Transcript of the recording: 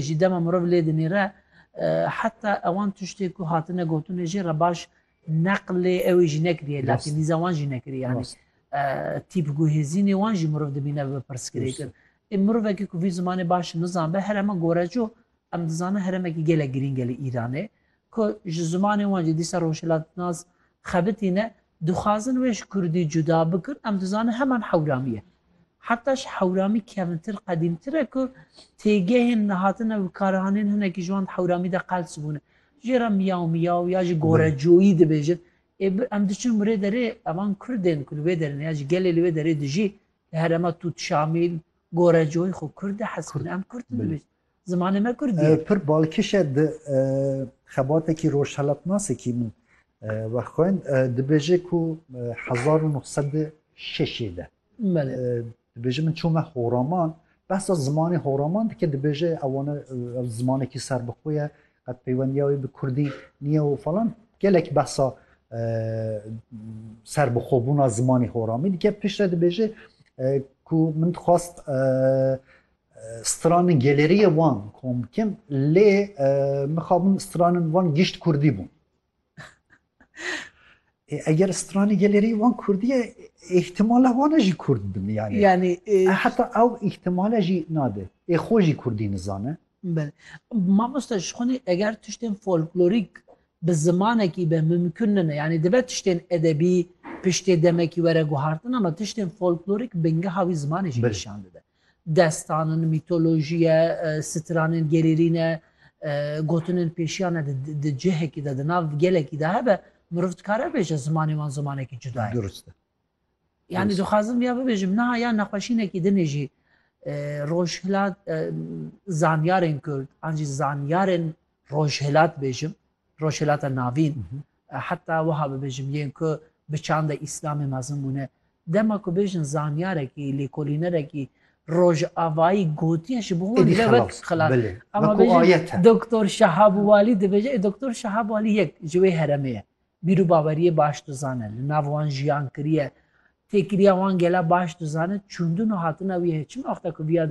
Ji dema mirov lê dinêre heta ewan tiştê ku hatine gotinê jê re baş neqlê ewê jî nekiriye latînîza wan jî nekiriye yanî tîp guhêzînê wan jî mirov dibîne bi pirsgirê kir. Ê mirovekî ku vî zimanê baş nizanbe herema goreco em dizane heremekî gelek girînge li Îranê ku ji zimanê wan jî dîsa rojhilatnas xebitîne Dixwazin wê ji kurdî cuda bikin, em dizanin heman hewramî ye. Heta ji hewramî kevintir qedîmtir e ku têgehên li hatine wikaranîn hinekî ji wan di hewramî de qels bûne. Jê re miyaw miyaw ya jî gorecoyî dibêjin. Ê bi em diçin wê derê e van kurdên ku li wê derê ne ya jî gelê li wê derê dijî li herêma Tût Şamîl, Gorecoyî xwe kurd e hez bûne. Em kurd dibêjin. Zimanê me kurdî ye. Pir balkiş e di xebatekî rojhelatnasekî min wexwend dibêje ku hezar û neh sed û şeşê de dibêje min çûme horaman behsa zimanê horaman dike dibêje ewana ev zimanekî serbixwe ye qet peywendiya wê bi kurdî niye û falan gelek behsa serbixwebûna zimanê horamî dike piştre dibêje ku min dixwast Stranin geleriye wan komkim lê mixabin stranin wan gişt kurdî bûn. eger stranî gelerî wan Kurdiye îhtimala wan jî Kurd bin yani. Yani heta ew îhtimala jî nade. Ê xwe jî Kurdî nizane. Mamosta ji xwe eger tiştên folklorîk bi zimanekî be mimkun nine. Yani dibe tiştên edebî piştê demekî were guhartin ama tiştên folklorîk bingeha wî zimanê jî nîşan dide. Destanin, mîtolojiye, sitiranên gerêrî ne, gotinên pêşiya ne di cihekî de, di nav gelekî de hebe, mirov dikare bibêje zimanê wan zimanekî cuda ye. Durust e. Yanî dixwazim vêya bibêjim, niha ya nexweşînekî dinê jî rojhilat zanyarên kurd an jî zanyarên rojhilat bêjim, Rojhilata Navîn, heta wiha bibêjim yên ku bi çanda Îslamê mezin bûne, dema ku bêjin zanyarekî, lêkolînerekî rojavayî gotiye ji bo wan ne wek xilas e. Ema bêjin Doktor Şehab Walî dibêje, ê Doktor Şehab Walî yek ji wê heremê ye. Bîr û baweriyê baş dizane, li nav wan jiyan kiriye, têkiriya wan gela baş dizane, çûndin û hatina wî heye. Çima wexta ku viya